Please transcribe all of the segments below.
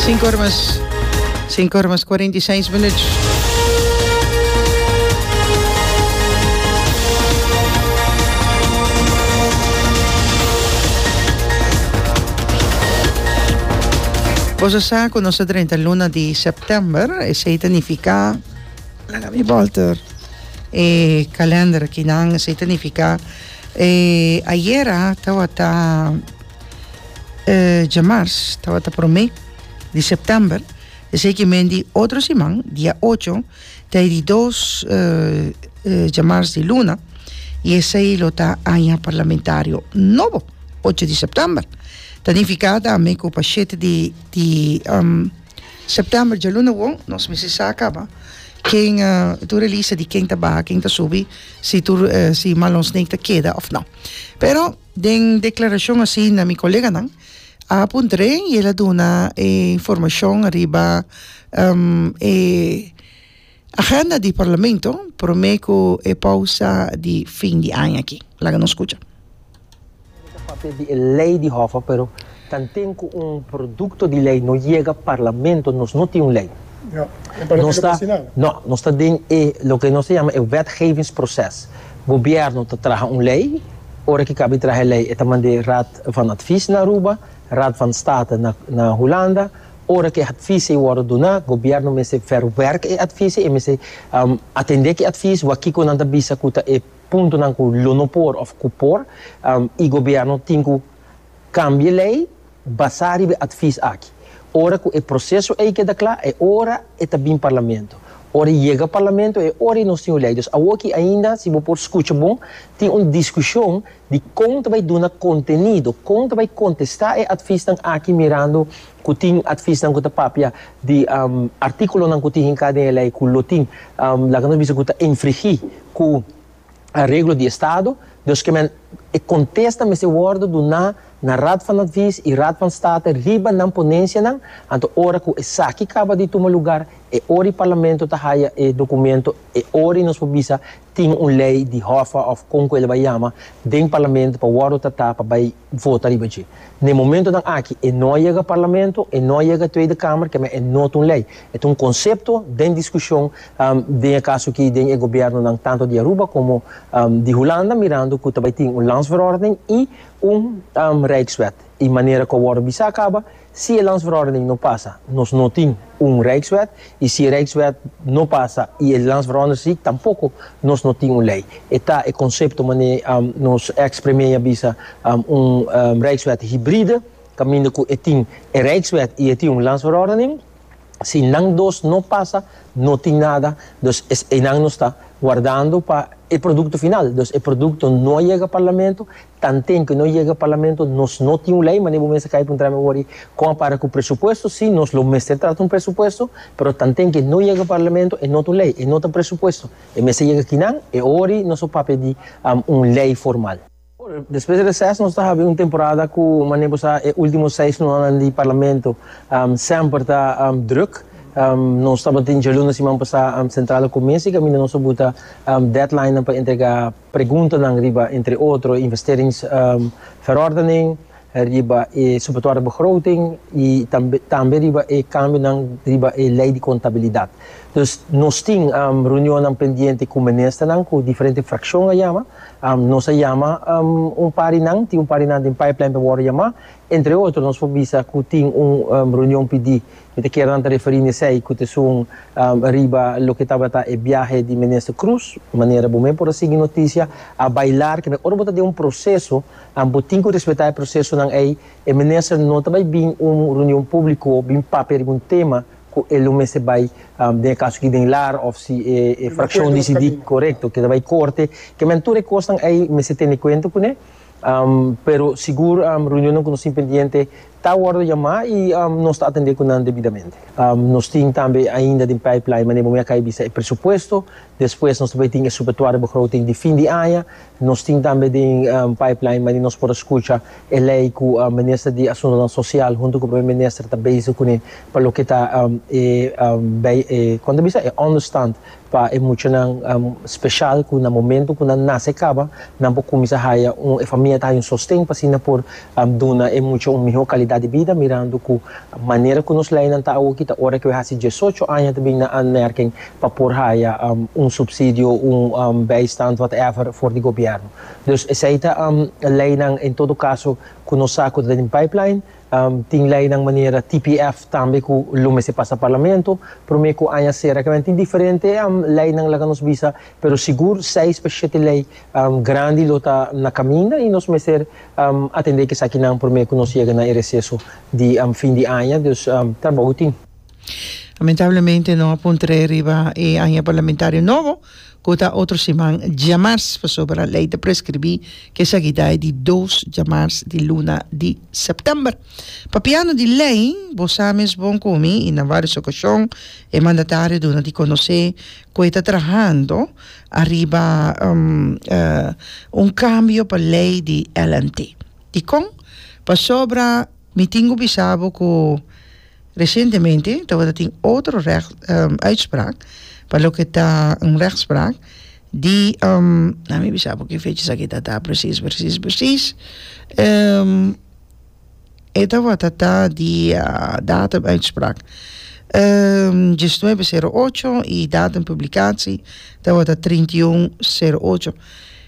Sinku ora mas sinku ora mas kuarenta i seis minuut. Bos a sa ku nos ta drenta luna di sèptèmber, esei ta nifiká, laga mi bòlter, e kalènder akinan, esei ta nifiká e ayera tabata eh, djamars, tabata promé di september, esei ki men di otro siman, dia ocho, tai di dos eh, eh, djamars di luna, y esei lo ta aña parlamentario nobo, ocho di september. Ta nifica tambe cu pa shete di, di um, september dja luna won, nos mester sa caba ken eh, tur e lista di ken ta baha, ken ta subi, si tur eh, si Marlon Snake ta keda of no. Pero, Den declaracion asina mi coleganan a puntre y el a duna e informacion ariba e agenda di Parlamento prome cu e pausa di fin di aña aki. Laga nos scucha. Mester papia di e ley di Hoffa pero Tanten cu un producto di ley no yega Parlamento, nos no tin un ley. Nos ta, no, nos ta den e loke nos ta yama e wetgevingsproces. Gobierno ta traha un ley, ora ki caba di traha e ley e ta manda e Raad van Advies na Aruba, Raad van State na na Hulanda. Ora cu e advies'ey wordo duna, Gobierno mester verwerk e advies'ey, e mester atende cu advies, wak kico nan ta bisa cu ta e puntonan cu lo no por of cu por, y Gobierno tin cu Cambie ley basá riba e advies aki. Ora cu e proceso ey keda cla e ora e ta bin Parlamento. Ora e yega Parlamento e ora nos tin un ley. Dus awoki ainda, si bo por scucha bon, tin un discusion di con ta bay duna contenido, con ta bay contesta e adviesnan aki mirando cu tin adviesnan cu ta papia di articulonan cu tin hinca den e ley cu lo tin, laga nos bisa cu ta infrigi cu. areglo di estado, dus kemen e kontesta mester wòrdu duná na Raad van Advies i Raad van State riba nan ponensianan, anto ora ku esaki kaba di tuma lugar, e ori Parlamento ta haya e dokumento, e ori nos por bisa tin un lei di hòfa òf kon ku el a bai yama den Parlamento pa wòrdu tratá pa bai vota riba dje. Na e momentonan aki e no a yega Parlamento, e no a yega Tweede Kamer, kemen e no ta un lei, e ta un konsepto den diskushon Den e kaso aki den e gobiernonan tantu di Aruba komo di Hulanda mirando ku ta bai tin un landsverordening i un rijkswet. I manera ku a wòrdu bisa kaba, si e landsverordening no pasa, nos no tin un rijkswet, i si e rijkswet no pasa i e landsverordening tampoko, nos no tin un lei. E ta e konsepto manera nos eks premier a bisa un rijkswet hibride, kaminda ku e tin e rijkswet i e tin un landsverordening. Si nan dos no pasa, no tin nada, dus es einan nos ta guardando pa e producto final. Dus e producto no a yega Parlamento, tanten cu no yega Parlamento nos no tin un ley, manera bo mester kaya preguntra mi awor ey, con a para cu presupuesto, si, nos lo mester trata un presupuesto, pero tanten cu e no yega Parlamento e no ta un ley, e no ta presupuesto, e mester yega kinan, e awor ey nos a papia di un ley formal. Despues di reses nos ta habi un temporada ku manera ku sa e ultimo seis nuanan di parlamento semper ta druk. Nos tabatin djalunes siman pasá sentrado ku mes i kaminda nos a buta deadlinenan pa entregá preguntanan riba entre otro investeringverordening, riba e Supletoria Begroting y tambe tambe riba e cambionan riba e Ley di Contabilidad. Dus nos tin reunionnan pendiente cu Ministernan, cu diferente fraccion a yama. Nos a yama un par di nan, tin un par di nan den pipeline pa worde yama. Entre otro nos por bisa cu tin un reunion pidi, mi ta kier nan ta referi n'esey, cu ta esun riba loke tabata e biahe di Minister Croes, manera bo mey por a sigui noticia, a bailar, kende ora bo ta den un proceso, and bo tin ku respetá e prosesonan ei, e minister no ta bai bin un reunion públiko bin papia riba un tema ku e lo mester bai den e kaso aki den lar òf si e frakshon disidí korekto keda bai korte. Kemen tur e kosnan ei mester tene kuenta kuné, pero sigur reunionnan ku nos tin pendiente ta wòrdu yamá i nos ta atendé ku nan debidamente. Nos tin tambe ainda den pipeline manera bo mi a kai bisa e presupuesto, despues nos ta bai tin e subetuariobegroting di fin di aña, Nos tin tambe den pipeline manera nos por a scucha e ley cu Minister di Asuntonan Social hunto cu Primer Minister ta bezig cune pa loke ta e con ta bisa e understand pa e muchanan special cu na momento cu nan nace caba nan por cuminsa haya un e famia ta haya un sosten pa asina por duna e mucha un miho calidad di bida mirando cu manera cu nos leynan ta awoki ta ora cu e haci diesocho aña ta bin na Anmerking pa por haya un subsidio, un bijstand, whatever, for di gobièrnu. Dus esei ta leinan en todo kaso ku nos sa ku ta den pipeline. Tin leinan manera TPF tambe ku lo mester pasa Parlamento. Promé ku aña sera kimen tin diferente leinan laga nos bisa, pero sigur seis pa shete lei grandi lo ta na kaminda i nos mester atendé ku esakinan promé ku nos yega na e reseso di fin di aña. Dus trabou tin. Lamentablemente no a pon trae riba e aña parlamentario nobo cu ta otro siman djamars pasobra e ley ta prescribi cu esaki ta di dos djamars di luna di september. Papiando di ley bo sa mes bon cu mi y na varios ocasion e mandatario duna di conoce cu e ta trahando ariba un cambio pa ley di LNT. Dicon? Pasobra mi tingo bisa bo cu. Resientemente tabata tin otro uitspraak pa loke ta un rechtspraak di na mi bisa bo ki fecha esaki ta ta precies precies precies e tabata ta dia datum uitspraak diesnuebe sero ocho y datum publicatie tabata trinta y un sero ocho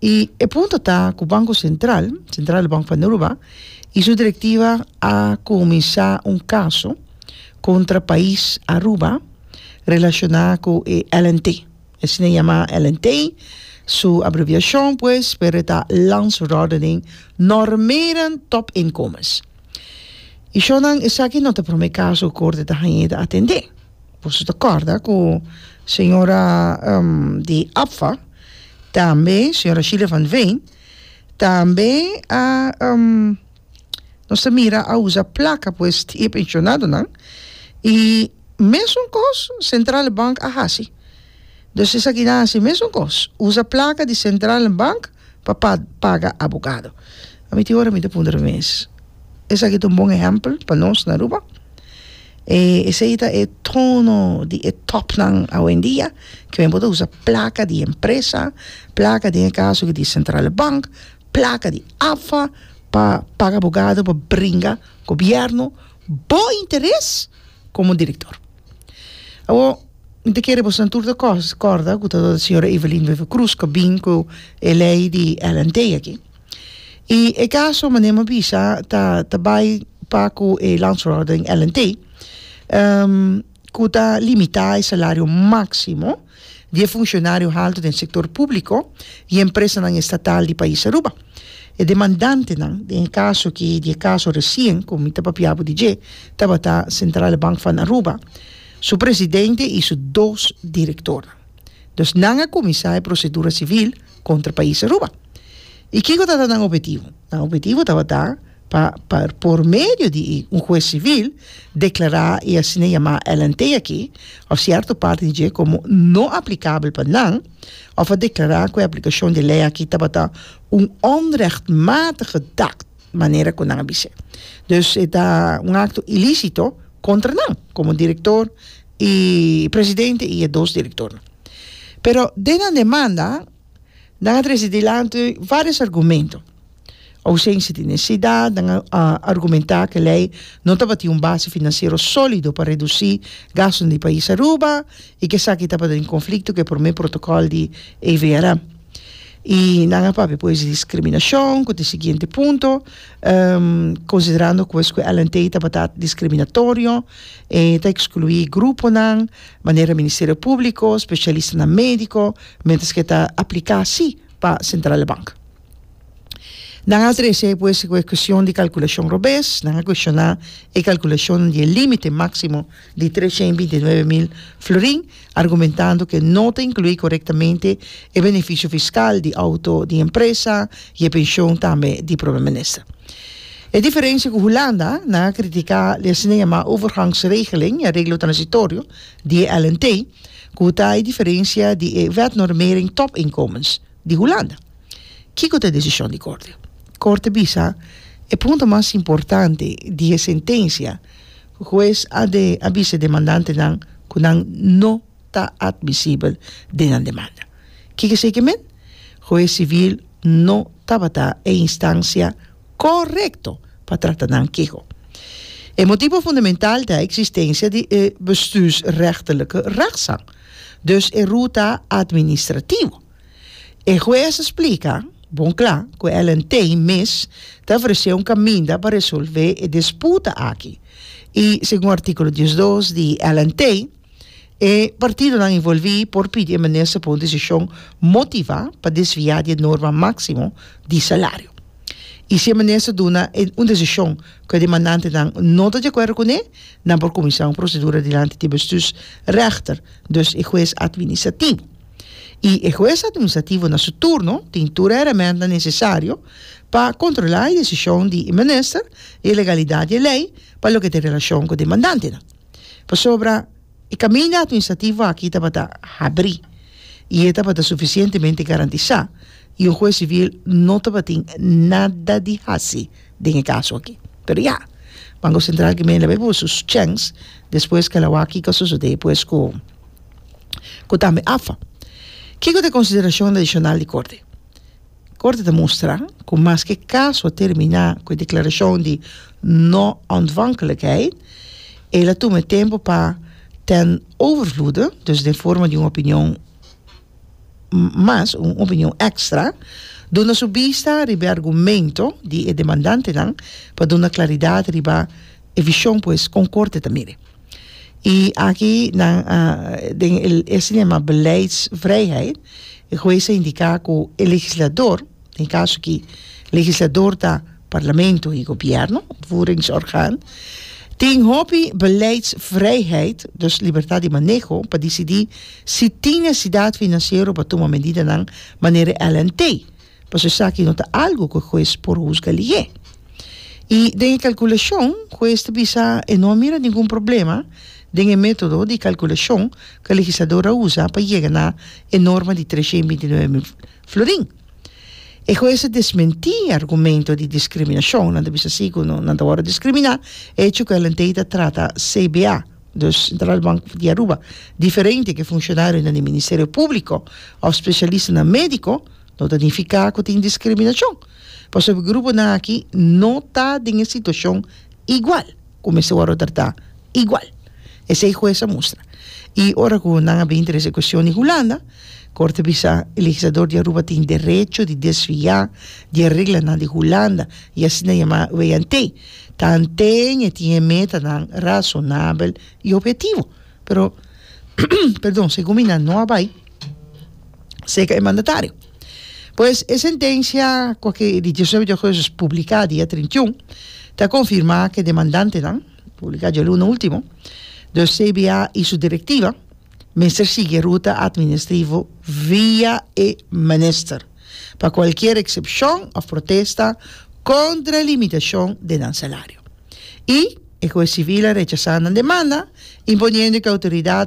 Y e punto ta cu Banco Central, Central de Bank van Aruba, y su directiva a cuminsa un caso contra pais Aruba relaciona cu e LNT. Asina e yama LNT, su abreviacion pues, pero e ta Lands Rordening Normeren Top Inkomens. Y shornan esaki no ta prome caso cu Corte ta haña y ta atende. Boso ta corda cu señora di APFA tambe, señora Sheila van Veen, tambe a nos ta mira a usa placa pues di e pensionadonan y mesun cos Centrale Bank a haci. Dus esaki nan a haci mesun cos, usa placa di Centrale Bank. pa paga abogado. A mi tin ora mi ta puntra mi mes, esaki ta un bon ehèmpel pa nos na Aruba? E esei ta e tono di e tòpnan awendia, ku men por ta usa plaka di empresa, plaka den e kaso aki di Sentrale Bank, plaka di AFA pa paga abogado pa bringa gobièrnu bo interes komo direktor. Awor, mi ta kere boso nan tur ta kos- kòrda ku ta dor señora Evelyn Wever Croes ku a bin ku e lei di Ellen Tey aki. I e kaso manera mi a bisa ta ta bai pa ku e landsverordening Ellen Tey ku ta limitá e salario máksimo di e funcionario halto den sector publico y empresanan estatal di pais Aruba. E demandantenan, den e caso aki di e caso recien cu mi ta papia bo di dje, tabata Centrale Bank van Aruba, su presidente y su dos directornan. Dus nan a cuminsa e procedura civil contra pais Aruba. Y kico tabata nan obhetivo? Nan obhetivo tabata. pa por medio di un hues sivil deklará e asina yamá LNT aki òf sierto parti di dje komo no aplikabel pa nan òf a deklará ku e aplikashon di e lei aki tabata un onrechtmatige daad, manera ku nan a bis'é. Dus e ta un akto ilísito kontra nan komo direktor i presidente i e dos direktornan. Pero den nan demanda nan a trese dilanti vários argumento. Ausensia di nesesidat, nan a argumenta cu ley no tabatin un base financiero solido pa reduci gastonan di pais Aruba y cu esaki tabata den conflicto cu e prome protocol di AVRA. Y nan a papia pues di discriminacion, cu ta e siguiente punto, considerando pues cu LNT tabata discriminatorio, e ta exclui gruponan, manera e Ministerio Publico, specialistanan medico, mientras cu e ta aplica si pa Centrale Bank. Nan a trese pues ku e kushon di kalkulashon robes, nan a kushoná e kalkulashon di e límite máksimo di treshen i binti nuebe mil florin, argumentando ku e no ta inkluí korektamente e benefisio fiskal di outo di empresa i e penshon tambe di Prome Minister. E diferensia ku Hulanda, nan a kritiká di asina yamá overgangsregeling i areglo transitorio di e LNT, ku ta e diferensia di e wetnormering topinkomens, di Hulanda. Kiko ta e desishon di korte? Korte bisa e pregunta mas importante di e sentensia, Hues a de a bisa e demandantenan ku nan no ta atmisibel den nan demanda. Kiko esei ke men? Hues sivil no tabata e instansia korekto pa trata nan keho. E motibo fundamental ta eksistensia di e bestuursrechtelike rechtzaak. Dus e ruta administrativo. E hues a splika bon kla ku LNT mes ta ofresé un kaminda pa resolvé e disputa aki i segun artíkulo diesdos di LNT e partidonan involví por pidi e minister pa un desishon motivá pa desviá di e norma máksimo di salario. I si e minister duna un desishon ku e demandantenan no ta di akuerdo kuné, Nan por kuminsá un prosedura dilanti di e bestuursrechter, dus e hues atministrativo. I e hues atministrativo na su turno tin tur e heremèntnan nesesario pa kontrolá e desishon di e minister i e legalidat di e lei pa loke tin relashon ku demandantenan. Pasobra e kaminda atministrativo aki tabata habrí i e tabata sufisientemente garantisá i un hues sivil no tabatin nada di hasi den e kaso aki. Pero ya, Banko Sentral ke mester a leba su chèns despues ke el a wak kiko a sosodé pues ku ku tambe AFA. Kiko ta e konsiderashon adishonal di Korte? Korte ta mustra ku maske e kaso a terminá ku e deklarashon di no ontvankelijkheid, el a tuma e tempu pa ten overvloede, dus den forma di un opinion, mas un opinion extra, duna su bista riba e argumento di e demandantenan pa duna claridad riba e vision pues con Corte ta miri. Y aki nan a den el estimado Beleidsvrijheid e Juez a indica cu e Legislador, den kaso ki legislador ta Parlamento i Gobièrnu, uitvoeringsorgaan, tin hopi beleidsvrijheid, dus libertat di maneho, pa disidí si tin nesesidat finansiero pa tuma medidanan manera e LNT, pasobra esaki no ta algu ku e hues por husga lihé. I den e kalkulashon, hues ta bisa e no a mira ningun problema den e método di kalkulashon ku e legislador a usa pa yega na e norma di treshen binti nuebe mil Florin. E hues a desmenti e argumento di discriminacion. Nan ta bisa si cu no nan ta worde discrimina, e hecho cu Ellentey ta trata CBA, dus Central Bank di Aruba, diferente cu e funcionarionan di Ministerio Publico of specialistanan medico, no ta nifica cu tin discriminacion, pasobra gruponan aki no ta den e situacion igual. ku mester wòrdu tratá igual, esei hues a mustra. I ora ku nan a bin trese kuestion di Hulanda, Korte a bisa, e legislator di Aruba tin derecho di desviá di e reglanan di Hulanda, i asina yamá weigh-and-tear, tanten e tin e metanan rasonabel i obiektivo. Pero, perdon, si Gumina no a bai, seka e mandatario. Pues e sentencia cu aki di diecinueve de agosto es publica dia trinta y un ta confirma cu e demandantenan, publica dialuna ultimo, dus CBA y su directiva mester sigui e ruta administrivo via e minister pa cualkier excepcion of protesta contra limitacion den nan salario. i e Hues Sivil a rechasá nan demanda, imponiendo e ke outoridat